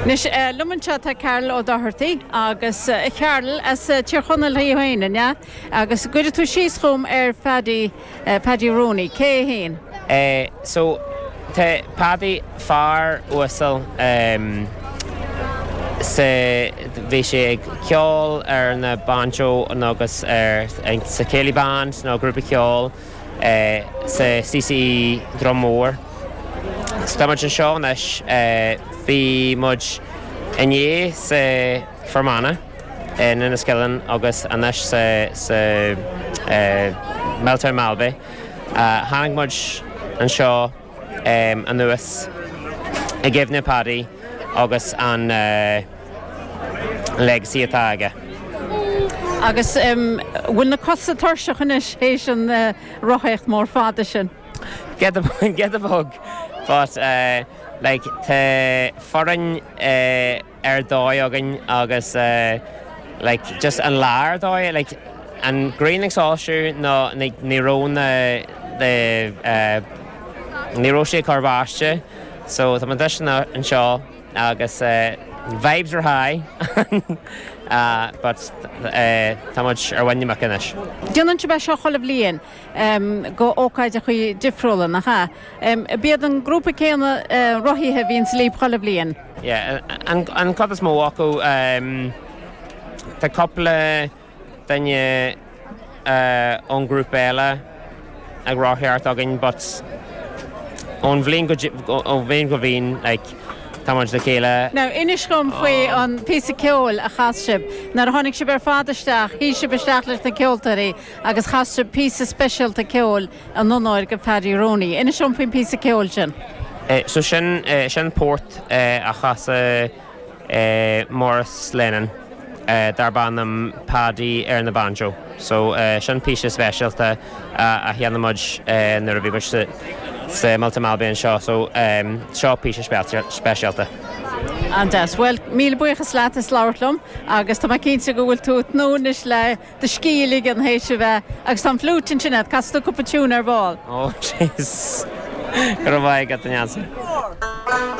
Anois liom anseo tá Carl Ó Dochartaí agus a Charl as Tír Chonaill thú fhéin an ea? Agus gcuirfeadh tú síos dhom ar Phaddy, Paddy Rooney, cé é fhéin? So tá Paddy, fear uasal sa, bhí sé ag ceol ar na banjo nó agus ar, sa Céilí Band nó grúpa ceoil, sa CCE Dhroim Mór. Tá muid anseo anois, bhí muid inné sa Fermanagh in Enniskillen agus anois sa Miltown Malbay. Tháinig muid anseo. anuas i gcuimhne Paddy agus an legacy atá aige. Agus bhfuil na cosa tuirseach anois théis an rothaíocht mór fada sin? Giota beag, giota beag! But like tá foireann ar dóigh againn agus like just an lá ar dóigh like an ghrian ag soilsiú nó like ní raibh na the eh ní raibh sé ag cur báistí so tá muid anseo agus vibes are high but eh tá muid ar bhain amach anois. Déanann sibh é seo chuile bhliain. go ócáideachaí difriúla, nach ea? Ab iad an grúpa céanna rothaithe a bhíonn libh chuile bhliain. Yeah, an chuid is mó acu. Tá cúpla duine ón ghrúpa eile ag rothaíocht thart againn but ón bhliain go bhliain go bhliain like tá muid le chéile. Now, inis dhom faoi an píosa ceoil a chas sibh. Nuair a tháinig sibh ar fad isteach, shuigh sibh isteach leis na ceoltóirí agus chas sibh píosa speisialta ceoil in onóir de Phaddy Rooney. Inis dom faoin bpíosa ceoil sin. So sin, sin port a chas Maurice Lennon darb ainm Paddy ar na banjo. So sin píosa speisialta a sheinn muid nuair a bhí muid sa Miltown Malbay anseo. So seo píosa speisialta. An-deas. Bhuel, míle buíochas leat as labhairt liom agus tá mé cinnte go bhfuil tú ag tnúth anois le do scíth ligean théis a bheith agus tá an fliúit ansin agat, casfaidh tú cúpla tiúin ar ball. Ó, jeez. Go raibh maith agat, a Neansaí.